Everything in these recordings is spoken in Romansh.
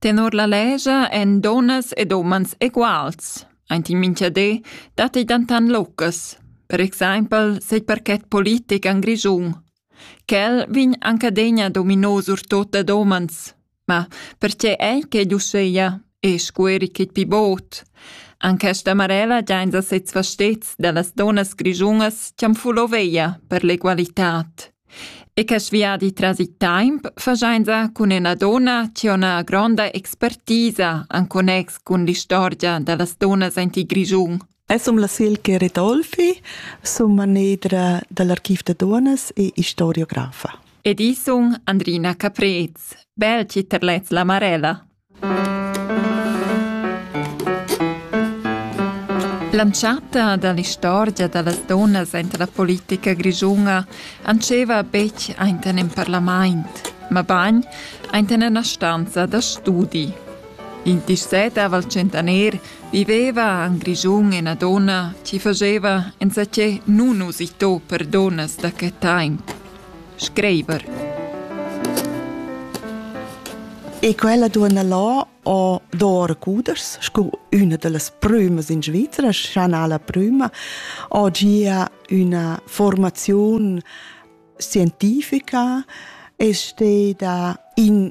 Tenor la legia èn dunnas ed umans eguals. Aint in mincha di datti dentant lucas. Per exaimpel set parchet politic en Grischun. Quel vegn anc adegna dominò surtut dad umans. Ma pertge ei quei uschea? E scueri chit pi bod. An questa marella giains a sezs fastets da las dunnas grischunas chi'am fulo veia per l'egualitad. E che viadi tras il temp faschainsa cun üna donna chi ho üna gronda expertisa in connex cun l'istorgia da las dunnas aint il Grischun. Ais sum la Silke Ridolfi, sum manedra da l'Archiv da Duonnas e istoriografa. Ed i sun Andrina Caprez, bel chi terlets la Marella. L'entschatta dall'istorgia dallas dunnas aint la politica grischuna antscheva betg ainten in parlamaint, mabagn aint in ena stanza da studi. In dissettav al tschentaner viveva en Grischun ena donna chi fageva enzatgé nun usitò per donnas da que taimp. Screiver. E quella duonna là ho d'or cuders sco üna da las prümas in Svizra, Chanala prüma, ho gia üna formaziun scientifica e steda in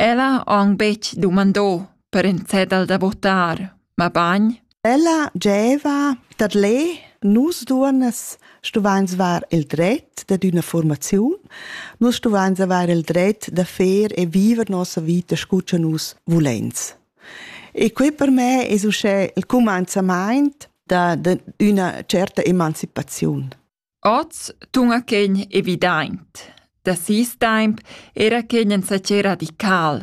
Ella ha aunc betg dumandò per in cedel da votar, mabain Ella gieva dad lè, nus duonnas stuvains var il dret dad üna fuormaziun, nus stuvains avair il dret da fer e viver nossa vita scu cha nus vuleins. E quai per me es uschè il cumanzamaint da d'üna tscherta emancipaziun. Oz tuna quegn evidaint. Da sis taimp era quegn ensatge radical.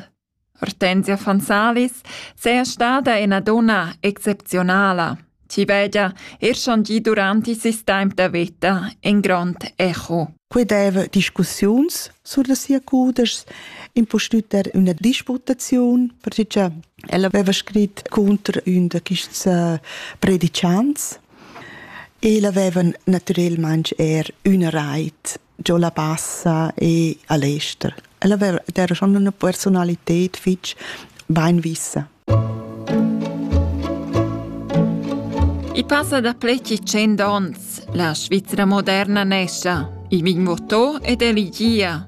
Hortensia von Salis seja stada ena donna exceptionala, chi vegia er schon gi duranti sis taimp da veta en grond echo. Quei deva discussiuns sur da sia cudeschs, impustüt er üna disputaziun, perché ella aveva scrit cunter ün da quists äh, predicants El havevan naturalmein er üna reit giò la Bassa e a l'ester. El haveva era schon üna personalited fich beinvissa. I passa da pleci cent ons. La Svizzera moderna nescia. I vin votò ed eligia.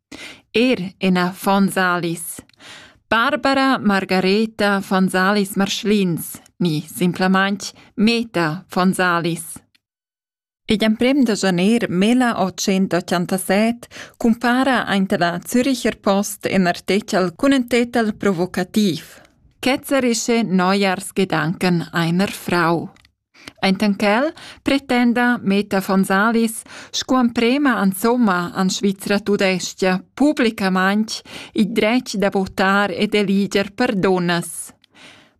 Er ina von Salis. Barbara Margareta von Salis Marschlins ni simplamaintg Meta von Salis. Igl emprem da janer 1887 cumpara aint la Züricher Post in artechel cun ün tetel provocativ. Ketzerische Neujahrsgedanken einer Frau. Enten quel pretenda Meta von Salis sco emprema insomma en Svizra tudestga publicamaintg il dretg da votar ed eliger per dunnas.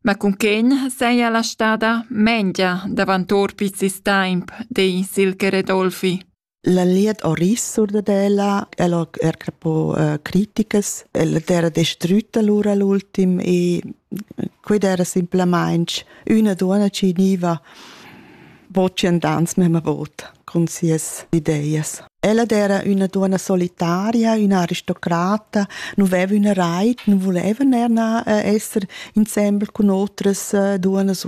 Ma cunquegn seia la stada mengia davant or piz il temp, di Silke Redolfi. La liet ho ris sur dad ella, el ho er crapo uh, critichas, ella d'era destrütta lura l'ultim e quid era simplamaing üna duonna chi gniva bocciand ans memma vot cun sias ideias. Ella d'era üna duonna solitaria, üna aristocrata, nu veva üna rait, nu vuleva ner na uh, esser insembel cun otras uh, duonnas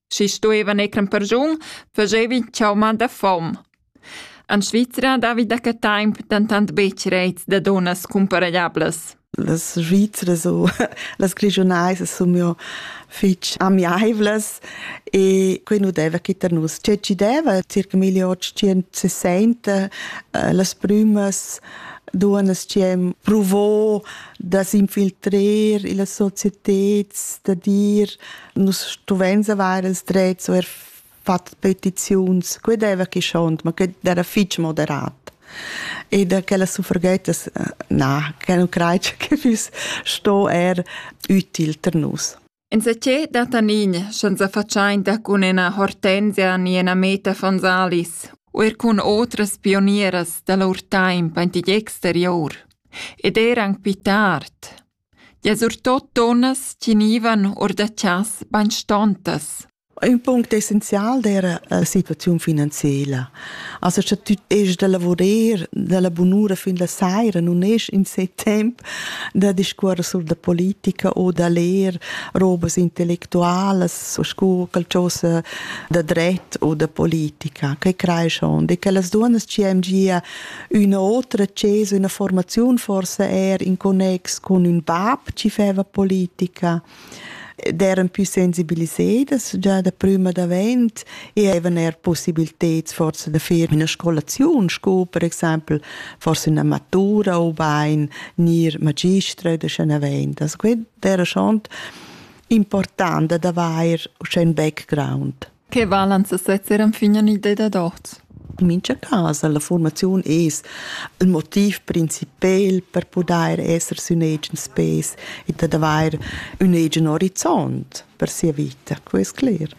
Schi stuevan eir in persun, fagevi chauma da fom. En Svizra davi da que temp dentant betg rets da dunnas cumparegliablas. Las Svizzras u las Grischunais sun jo fich amiaivlas e quai nu deva chi tar nus. Tge ci deva circa 1860 eh, las prümas duonas chi hem provo da s'infiltrer illa societed da dir nus stuvein avair ils drets o er fatg petiziuns, que deva chi schont, ma que era fitg moderat. E da quella suffragettas, na, che non crei che füss sto er util per nus. In secè da tanin, senza faciainta cun ena hortenzia ni ena meta Fonsalis, o er cun otras pionieras da lur taimp antigli exterior, ed er anc pi tard, Ja surtot dunnas tegnivan or da chas bainstontas. Ün punct essenzial d'eira la situaziun finanziela. Also cha tü est da lavurer dalla bunura fin la saira nun es insè temp da discuorrer sur da politica o da ler robas intellectualas o scu qualchosa da dret o da politica. Que creeschond e quellas duonnas chi am gia Üna otra access, üna formaziun forse er in connex con ün bab chi feva politica d'eran più sensibilisedas già da prima davent e avevan er possibiliteds forse da far üna scolaziun sco per exaimpel forse üna matura ubain gnir magistra da scha navendas. Quai era schon important ad avair uschè ün background. Che valan sesezzer enfin en idea dad hoz? In mincha cas la fuormaziun es il motiv principel per pudair esser sün agens pes ed ad avair ün agen orizont per sia vita, que es cler.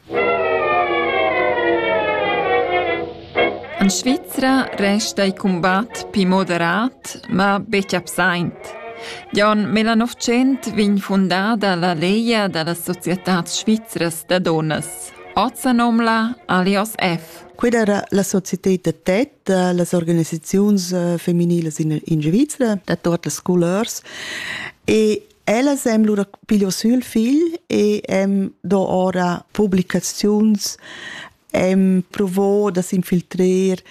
En Svizra resta il cumbat pli moderat, ma betg absaint. Già en 1900 vegn fundada la Legia da las societads svizras da dunnas. Oz sa nomna Alias F. Quella era la società da tet, las organisaziuns feminilas in, in Svizra, da tot las scolars. E ellas hem lura piglio sül figl e hem do ora publicaziuns em provo da s'infiltrer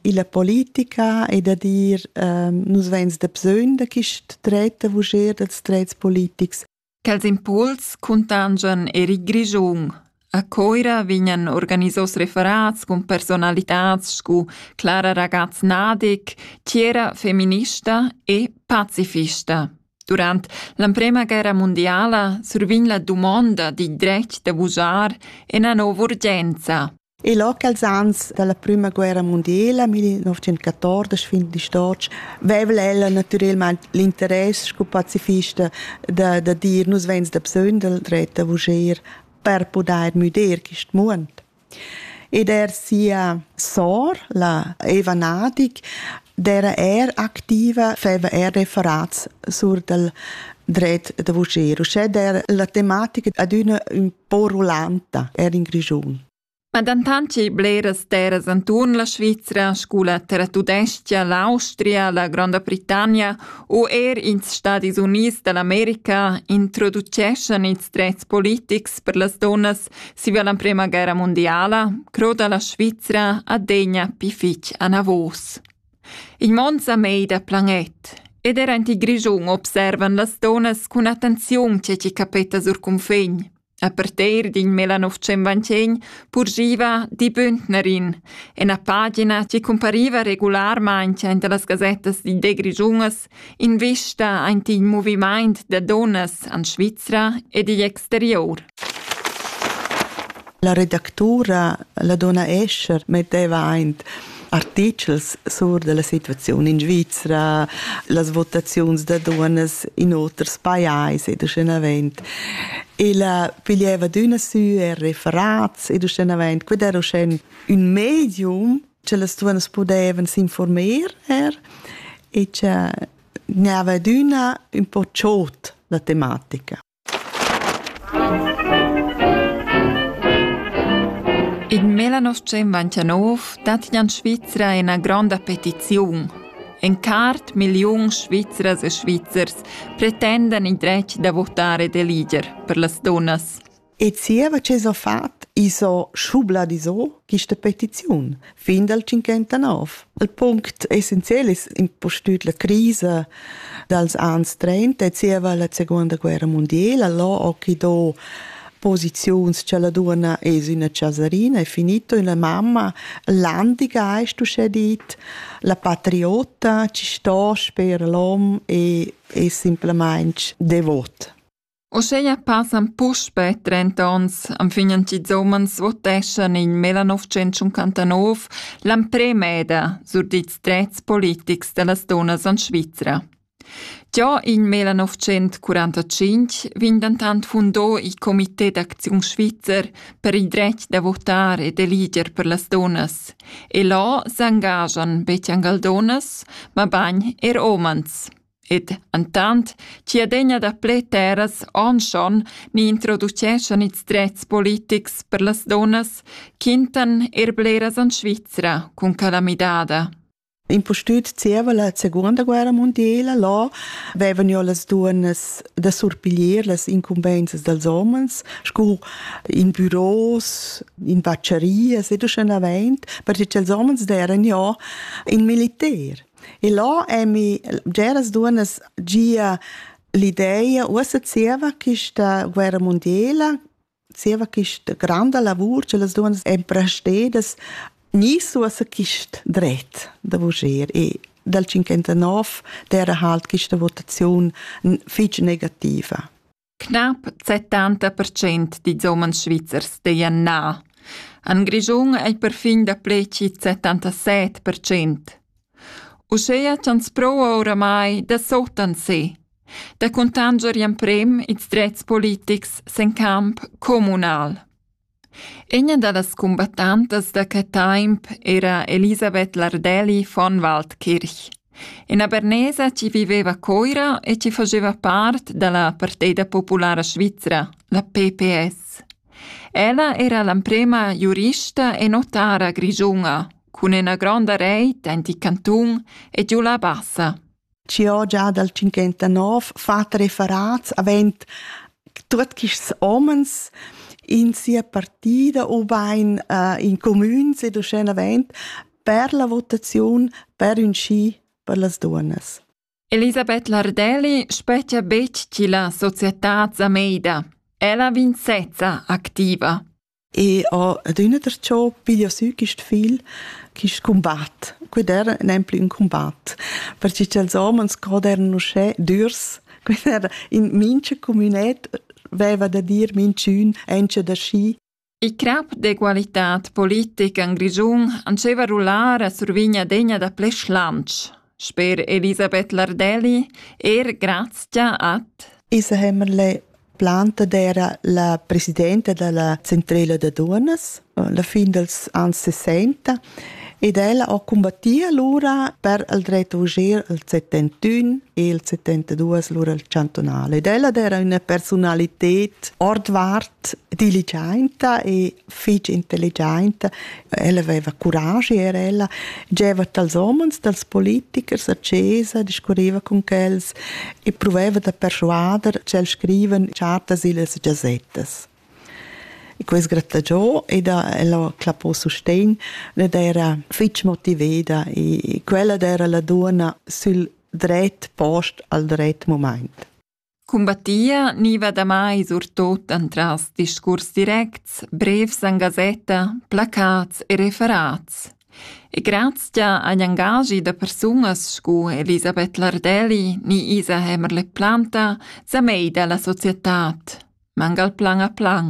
illa politica e da dir ehm, nus vains da bsögn da quist dret a vujer dals drets politics. Quels impuls cuntangian er il Grischun. A Coira vegnan organisos referats cun personalitats scu Clara Ragaz-Nadig, Tiera feminista e pacifista. Durant l'emprema guerra mondiala survegn la dumonda dil dretg da vusar ina nova urgenza. E loc als ans dalla prima guerra mondiala, 1914 fin di Storch, vevla ella naturalmente l'interesse sco pazifista da, da dir nus vens da bsöndel dret da vuger per podair müder quist muond. Ed er sia sor, la Eva Nadig, d'era er activa, feva er referats sur dal dret da vuschir, uschè d'er la tematica adüna ün po rulanta er in Grischun. Ma dentant chi bleras terras anturn la Svizra, scu la Terra Tudescha, l'Austria, la Gronda Britannia u er ins Stadis Units da l'America introduceschan ils drets politics per las donnas Siva la prema guerra mondiala croda la Svizra adegna pi fitg anavos. Il mond sa mei da planet ed era in Grischun observan las donas cun attenziun ce ci capeta sur cunfegn. A parteir din Melanovcemvanchen purgiva di Bündnerin, en a pagina ci compariva regularmain in de las gazettas di de Grigiunas Invista aint il movimaint da dunnas en Svizra ed igl exterior. La redactura, la donna Escher, metteva aint artichels sur della situaziun in Svizra, las votaziuns da dunnas in oters pajais ed uschenavent. Ella piglieva d'üna sü e referats ed uschenavent, quid era uschè un medium che las duas pudevan s'informar er e che gnava adüna ün po chod la tematica. In Melanos 199 dat in Svizra ina grande petizione. En cart miliun svizras e svizzers pretendan il dretg da votare de liger per las donnas. E zieva che s'ho fat, i's ho schubladisò quista petiziun fin dal 59. Il punct essenzial es impustüt la crisa dals ans 30 e zieva la seguonda guerra mundiela, là ho chi do posiziuns cha la duonna es üna chasarina, è finito, e la mamma landigeist uschè dit, la patriota chi sto sper l'hom e es simplamaing devot. Uscheia passan puspe trenta ons anfignen ch'ils umans voteschan in millenovecentschuncantanov l'amprem eda sur dils drets politics dallas dunnas en Svizra. Già in millenovecentschurantacinque vegn dentant fundò il Comité d'acziun svizzer per il dretg da votar e d'eliger per las dunnas e là s'engagian betg angal dunnas, mabain er umans. Ed entant chi adegna daplè terras onschon ni introduceschan ils drets politics per las dunnas, quintan eir bleras en Svizra cun quella midada. Impustüt zieva la seguonda guerra mondiela là vevan jo las duonnas da surpiglier las incumbenzas dals homens scu in büros, in vacciarias ed uschenavant, perche cha'ls homens deran jo in militer. E là è mi bgeras duonnas gia l'ideia, uossa zieva quista guerra mundiela, zieva quista granda lavur che las duonnas èn prestedas, gnisse uossa quist dret da vuger e dal 59 d'era halt quista votaziun fich negativa. Knapp 70% dils umens svizzers deien na. En Grischun ei perfin dapleci 77%. Uschea ch'ans pro ora mai da sotan se, da cuntanger emprem ils drets politics sen camp communal. Üna da las cumbattantas da que taimp era Elisabeth Lardelli von Waldkirch, üna bernesa chi viveva a Coira e chi fageva part da la Partida Populara Svizra, la PPS. Ella era l'amprema giurista e notara grischuna cun üna gronda reit aint il cantun e giù la Bassa. chi ho già dal 59 fat referats avend tuot quists homens in sia partida ubain äh, in comüns ed uschenavant per la votaziun per ün schi per las duonnas. Elisabeth Lardelli spettia betg chi la società Zameida. Ella vinzezza activa. E ho adüna darcho piglio sü quist fil, quist cumbat. Quid era nemplü ün cumbat, perche cha'ls homens god eran uschè dürs. Quel era in mincha comünet veva da dir minchün enzcha da schi. Il crap d'egualità politic in Grischun andscheva rullar a survigna degna da ple schlantsch. Sper Elisabeth Lardelli er grazia ad Isa Hämmerle planta d'era la presidenta della centrela da dunas la fin dels anns 60 ed ella ha combattit allora per il dret uscir il 71 e il 72 lura il cantonale ed ella era una personalitat ordvart diligenza e fich intelligenta, ella aveva curaschi era ella, gieva dals homens, dals politichers a chesa, discurriva con quels e proveva da persuader ch'els scrivan chartas illas gazettas. E quest grattagiò ed ella clappò sustegn, ed era fitg motiveda e quella era la duona sül dret post al dret moment. Cumbattia gniva damai surtot entras discurs directs, brevs en gasetta, placats e referats. E grazcha agl engaschi da persunas scu Elisabeth Lardelli ni Isa Hämmerle-Planta sa meida la societad, mangal plan a plan.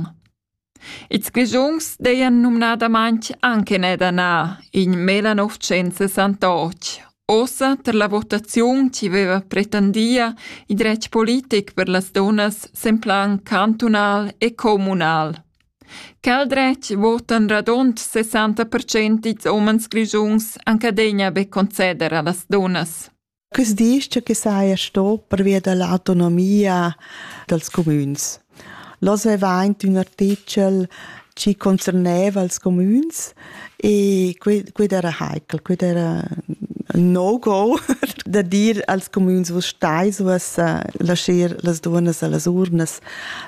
Ils Grischuns dajan numnadamain anc in ed anà in 1968. Ossa tar la votaziun chi veva pretendia il dretg politic per las dunnas sen plan cantunal e communal. Quel dretg votan radund 60% dils homens grischuns anca degna be conceder a las dunnas. Quest disch che saja sto pervia da l'autonomia dals cumüns. L'hoz vaiva aint ün artichel chi concerneva els cumüns e quid era heikel, quid era ün no-go da dir als cumüns vus stais uoss lascher las duonnas a las urnas.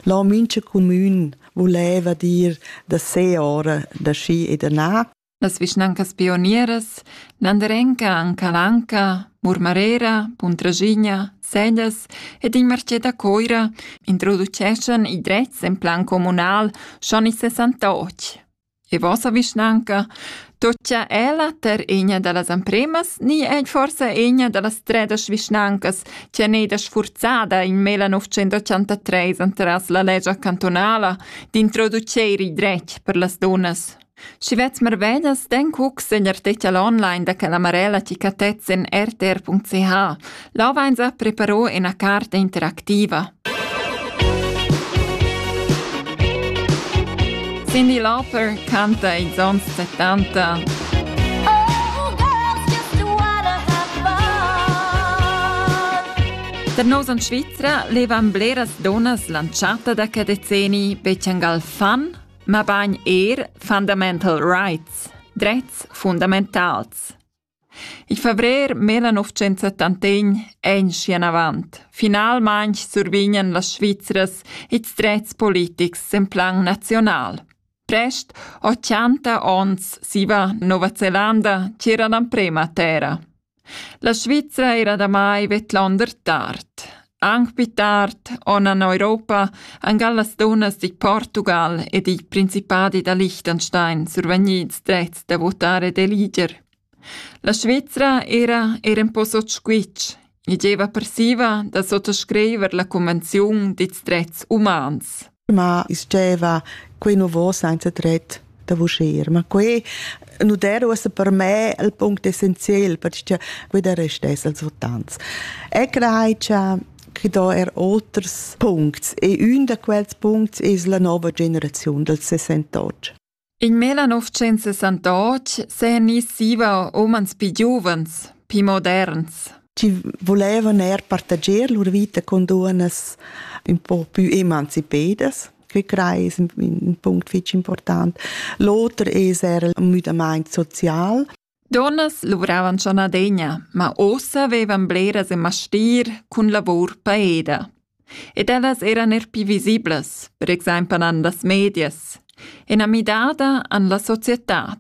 Là mincha cumün vuleva dir da se ora da schi e da na Las vischnancas pionieras Landerenca an Calanca, Murmarera, Puntraschigna, Sellas ed il marcé da Coira introduceschan i drets en plan communal schon in 68. E vossa vischnanca toccia ella ter egna da las ampremas ni è forse egna da las tredas vischnancas che è neda sfurzada in mela 983 antras la legia cantonala d'introduceir i dret per las dunas? Schi vets marvedas den cucs in artichel online da quella marella chi catets in rtr.ch. Là vainsa preparo üna carta interactiva. Cyndi Lauper canta ils ans 70. Per nos in Svizra levan bleras donas lanciata da che decenni bechangal fan mabain er fundamental rights, drets fundamentals. Il febrer 1971 è in schienavant. Finalmain survignan las Svizras ils drets politics en plan nazional. Prest 80 ons siva Nova Zelanda c'era l'emprema terra. La Svizra era damai vedlonder tard. Anc pli tard on en Europa angal las dunnas dig Portugal ed i principadi da Liechtenstein survegnids drets da votare d'eliger. La Svizra era er un po sot squitsch. I deva persiva da sottoscriver la convenziun dits drets umans. ma steva quei nu vo senza tret da vuscher ma quei nu der uossa per me il punct essenzial perché quei der restess als votants e crei cha che do er oters puncts e un da quels puncts es la nova generaziun dals 68 In millenovecentsessantotg s'eigniss zieva umans pii giuvens, pii moderns. Chi vulevan eir partager lur vita cun duonnas ün po pü emancipedas. Que crei es ün punct fich important. L'oter es eir ün müdamaint social. Dunnas luvravan schon adegna, ma ussa vevan bleras e mastir cun lavur paeda. Ed ellas eran er pi visiblas, per exempel an las medias. Ena midada an la societad.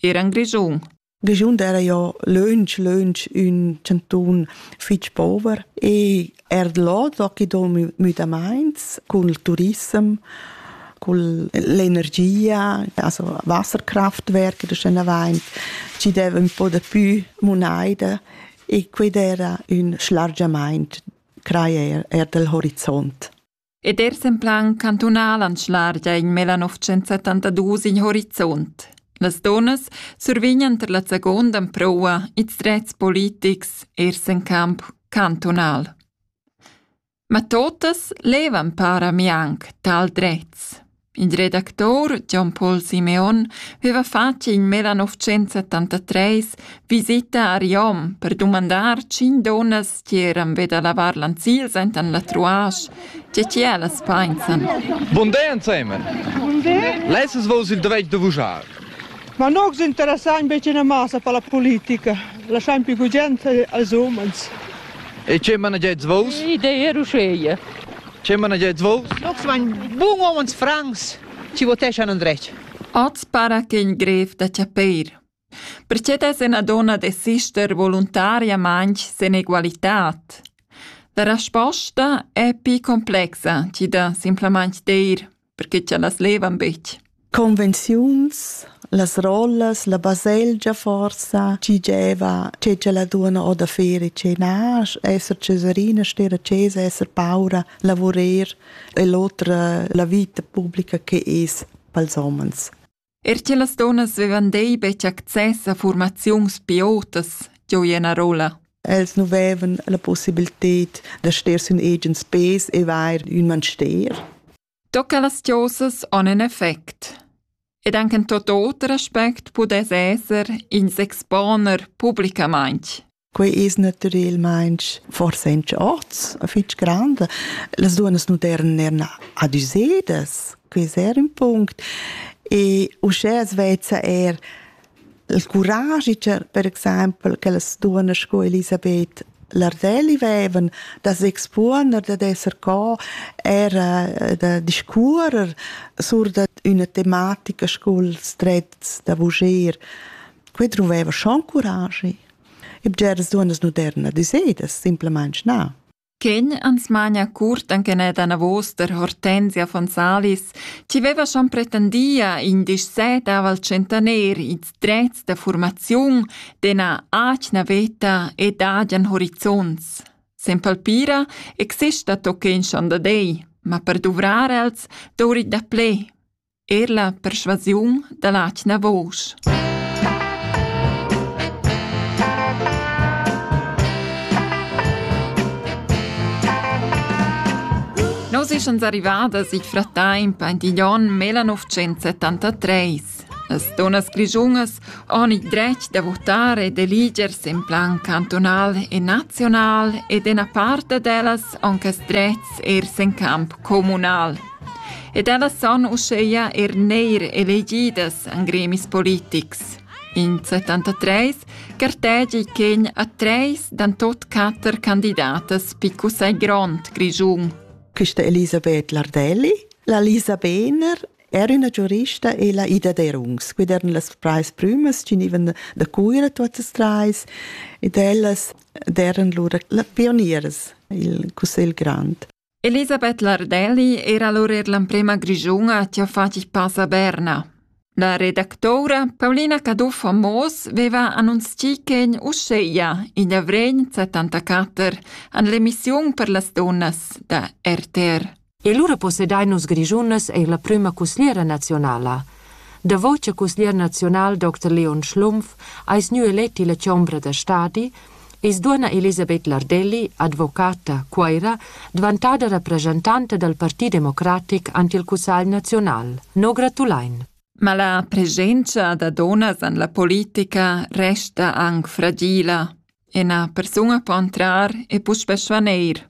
Eran Grischun. Grischun era ja lönch, lönch ün cantun fitg pover e Er là tocchi do müdamaints cun il turissem, cun l'energia, also Wasserkraftwerke, das schön erwähnt, ci deve un po de più moneide e quid era ün schlargiamaint creer er del horizont. Ed er sen plan cantunal anschlargia in mela 972 in horizont. Las donnas survignan ter la seconda proua ils drets politics ers en camp cantunal. Ma totas levan para mi anc tal drets. Il redactur Jon Paul Simeon veva fatg in meda novcenza tantatres visita a Riom per dumandar tschin dunnas che eran ve da lavar lanzils enten la truasch, tge che ellas painsan. Bun day ensemen. Bun day. Lesses vos il doveit de vujar? Ma non vos interessa in becina massa per la politica. Lasciam più gugent als umans. E ce managez vos? Idee ruscheie. Che managets vos? Nox vain bun homens francs ci voteschan andret. Oz para che in grev da chapeir. Perché des una donna desister voluntariamente sen egualitad? La resposta è più complexa ci da simplamente dir perché cha las levan betg. Convenziuns, las rollas, la baselgia forsa, chi gieva, che c'è la duona o da fere cenar, esser ceserina, stera cesa, esser paura, lavurer e l'otra la vita pubblica che es pels homens. Er che las dunnas vevan dei betg access a formaziuns piotas, gioi en a rolla. Els nu vevan la possibilität da ster sün egens pes e vair ün manster. Tocca las chosas on en effect. Ed anche in tot oter aspect pudess esser ins exponer publicamaint. Quei es naturelmaing forsa in oz fich grande. Las duonas modernen eran adüsedas, quei es eir ün punct. E uschè as vezza eir il curagi per, per exaimpel che las duonas sco Elisabeth Lardelli vevan da s'expuoner, da d'esser co era eh, da discuorer sur da üna tematica sculs drets da vuger. Quei druveva schon curagi. E bgeras duonnas modernas dissedas simplamaing na. Ken ans magna curt anche net anavos der Hortensia von Salis, ci veva schon pretendia in disset aval centener its drets da formaziun dena acna veta ed adian horizonts. Sen palpira exista tochen schon da dei, ma per duvrare els dori da ple. Er la perschuasiun da l'atgna vusch. Nos eschans arrivadas il frattemp aint igl onn 1973. Las donas grischunas han il dretg da votar ed eligersi en plan cantonal e naziunal ed ena parte d'ellas han quest drets ers en camp comunal. Ed ellas son uscheia er neir elegidas an gremis politics. In 73 gartegi chegn a treis dan tot quatter candidatas pi cussagl grond Grischun. Questa Elisabeth Lardelli, la Lisa Behner, era una giurista e la Ida Derungs, quid eran las trais prümas genivan da Cuira tuottas trais ed ellas deran lura la pionieras il Cussegl Grand. Elisabeth Lardelli era allura l'emprema Grischuna chi ha fat il pas a Berna. La redactoura Paulina Caduff a Moos veva annunzchì ch'en uscheia in avrign 74 an l'emissiun per las dunnas da RTR. E lura possedai nus Grischunas eir la prüma cusgliera nazionala. Davo cha cusglier nazional Dr. Leon Schlumpf ais gnü elet illa chombra da stadi, I's duonna Elisabeth Lardelli, advocata, Cuoira, dvantada rapresentanta dal Parti democratic ant il Cussagl naziunal. No gratulain. Ma la presenza da donas en la politica resta anc fragila e na persuna può entrar e puspè svaneir.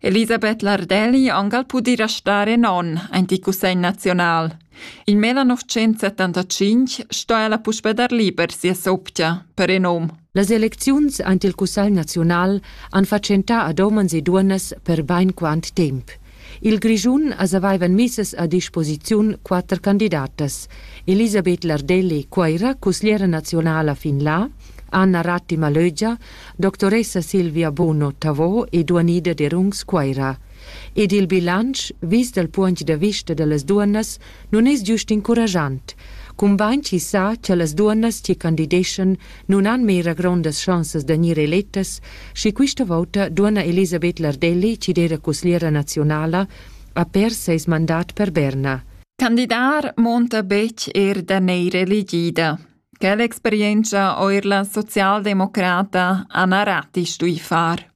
Elisabeth Lardelli angal pudi restar in onn aint il Cussegl naziunal. In 1975 sto ella puspe dar liber sia soptia, per in um. Las elecziuns aint il Cussegl naziunal han fatschentà ad omens e duonnas per bain quant temp. Il Grischun as avaivan misses a disposiziun quatter candidatas. Elisabeth Lardelli, Cuoira, cusgliera nazionala fin là, Anna Ratti Malögia, doctoressa Silvia Bono Tavò e duanida d'Erungs Cuaira. Ed il bilanc, vis dal puogn da vista da las duonnas, nun es giust incurajant, cumbain chi sa cha las duonnas chi candideschan nun han mera grondas chansas da gnir elettas, schi quista vouta duonna Elisabeth Lardelli chi d'eira cusgliera naziunala ha pers seis mandat per Berna. Candidar monta betg er da neir elegida. Quella experientscha eir la socialdemocrata Anna Ratti stui far.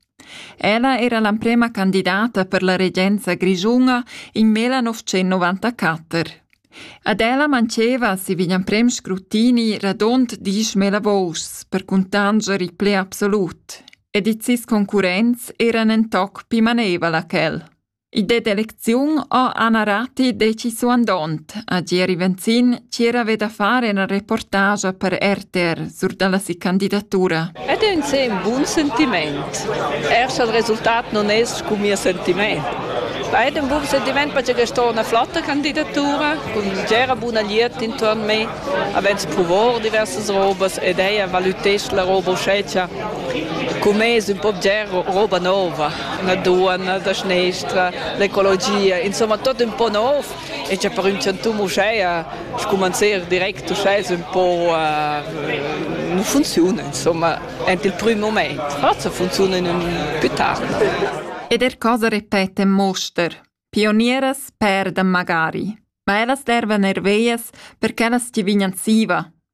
Ella era l'emprema candidata per la regenza grischuna in 1994. Ad ella manceva si vegn emprem scrutini radond disch mela vous per cuntanger il ple absolut, ed its concurrents eran en toc pi manevala ch'el. Il det d'elecziun ho Anna Ratti decisu andond a Gieri Venzin ch'er haveva da far ina reportagia per RTR sur dalla si candidatura. Ed è ün se ün bun sentiment. Er sch'el resultat non es scu mia sentiment. Ed ün bun sentiment perche che sto una flotta candidatura cun gera buna liert intorn me, avens provò diversas robas ed ella valutesce la roba uschè cha cum es ün po bger roba nova. la duonna da schnestra, l'ecologia, insomma tot un po nov e c'è per un chantum uschè scumanzer direct uschè un po uh, non funziona insomma ent il primo moment forse funziona in un più tardi ed er cosa repete Moster Pionieras perdan magari, ma ellas dervan er veias per ch'ellas ti vignan siva